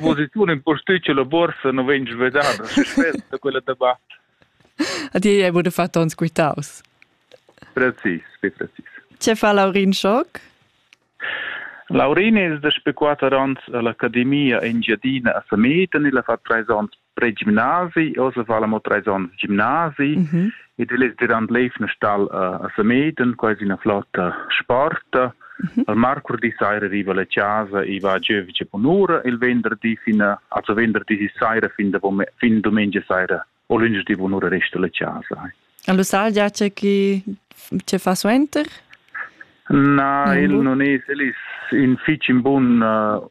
Vos ei tun impostici la borsa non vegn svedada, spess da quella da ba. A ti hai wurde fatto uns quitaus. Precis, sì, precis. Ce fa Laurin Schock? Laurin es da spe quatter ans all'Academia Engiadina a Sametan, il ha fatto treis ans pre-gimnasi, oz va la mo treis ans gimnasi, mm -hmm. ed el es derant l'eivna stal a, a Sameden, quasi üna flotta sporta. Mm -hmm. Al marcurdi saira riva la chasa e va a giövice bunura il venderdi fin a, also venderdi saira fin, da, fin domenica saira o lunedì bunura resta la chasa. Allo sal giace chi ce fa suenter? Na, il non es, el is in fich in bun uh,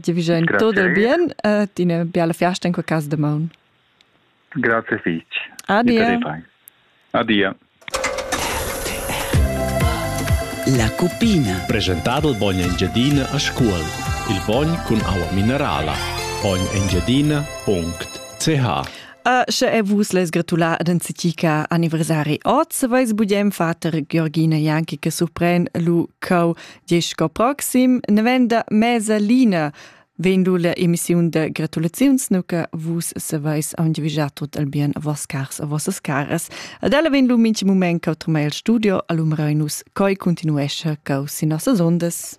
Ti vi en tot il bien e ti una biala festa in quel cas de maun. Grazie fich. Adia. Adia. La cuppina. Presentado il bogn Engiadina a scuol. Il bogn cun aua minerala. Bognengiadina.ch A sche e vus les gratula ad anzitica anniversari oz, vais budem fater Georgina Janki che surpren lu cau Gest sco proxim novenda mesa Lina Ven du la emissiun de gratulaziuns nuca vus saveis aundivigiar tot al bien a vos cars a vossas caras. Ad ella ven lu minchi moment cau trumei al studio, alum reunus, coi continuescha cau sin nossas ondas.